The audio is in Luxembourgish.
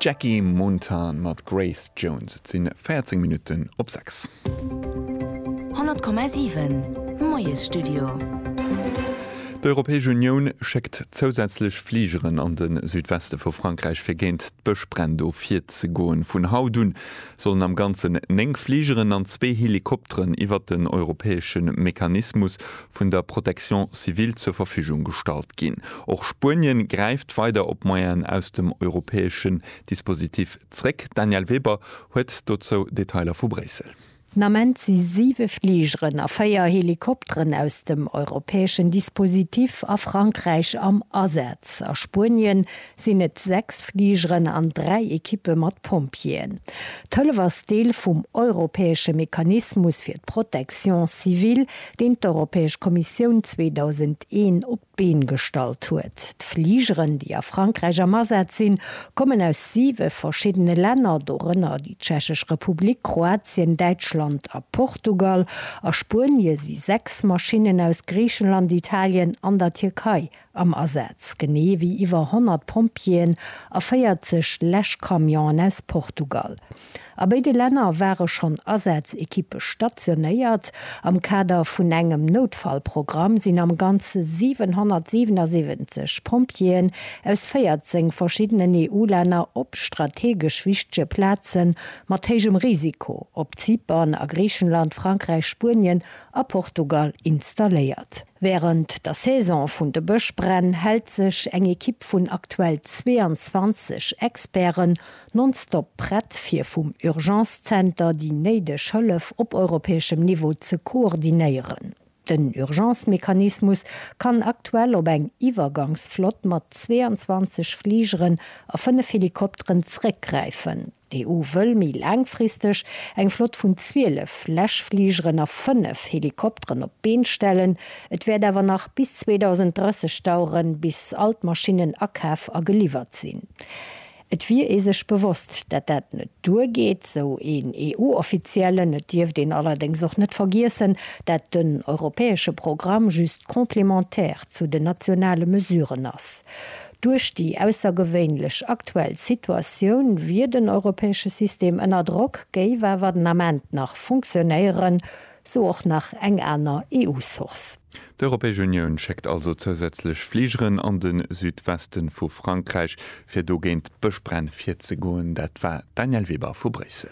D'Jackie Mountain mat Grace Jones. Et si 14 Minutten op 6. 100,7 Moiesstudio. D'Europäesch Unioun schéckt zousätzlech Fligeren an de Südweste vu Frankräich fir géint d'Bëschbränn do virzegoen. Vun haut un sollen am Ganzen 9 Fligeren an zwee Helikopteren iwwert den europäesche Mechanismus vun der Protection civile zur Verfügung gestallt ginn. Och Spuenien gräift weider op Moyenen aus dem europäeschen Dispositif zréck. D'Danièle Weber huet dozou Detailer vu Bréissel. Den Ament si siwe Fligeren a véier Helikopteren aus dem europäeschen Dispositif a Frankräich am Asaz. A Spuenien sinn et sechs Fligeren an dräi Ekippe mat Pompjeeën. D'Hëllef ass Deel vum europäesche Mechanismus fir d'Protection civile, deen d'Europäesch Kommissioun 2001 op d'Been gestallt huet. D'Fligeren, déi a Frankräich am Asaz sinn, kommen aus siwe verschiddene Länner, dorënner déi Tschechesch Republik, Kroatien, Däitschland a Portugal. A Spuenie si sechs Maschinnen aus Griichenland, Italien an der Tierkei am Asaz, genee wéi iwwer 100 Pompjeeën a 40 Läschcamionen aus Portugal. A béide Länner ware schonn Asaz-Ekippe stationéiert. Am Kader vun engem Noutfallprogramm sinn am Ganze 777 Pompjeeën aus 14 verschiddenen EU-Länner op strategesch wichtege Plaze mat héijem Risiko op Zypern, a Griichenland, Frankräich, Spuenien a Portugal installéiert. Wärend der Saison vun de Bëschbränn hält sech eng Ekipp vun aktuell 22 Experten nonstop prett, fir vum Urgence Center déi néideg Hëllef op europäeschem Niveau ze koordinéieren. Den Urgence Mechanismus kann aktuell op eng Iwwergangsflott mat 22 Fligeren a 5 Helikopteren zeréckgräifen. D'EU wëll méi laangfristeg eng Flott vun 12 Läschfligeren a 5 Helikopteren op d'Been stellen. Et wäert awer nach bis 2030 daueren, bis all d'Maschinnen akaf a geliwwert sinn. Et wier ee sech bewosst, dat dat net duer geet, sou een EU-Offiziellen. Et dierft een allerdéngs och net vergiessen, dat den europäesche Programm just complémentaire zu den nationale Mesuren ass. Duerch déi aussergewéinlech aktuell Situatioun wier den europäesche System ënner Drock, géif awer den Ament nach funktionéieren, sou och nach eng aner EU-Source. D'Europäesch Unioun schéckt also zousätzlech Fligeren an de Südwesten vu Frankräich, fir do géint d'Bëschbränn virzegoen. Dat war d'Danièle Weber vu Bréissel.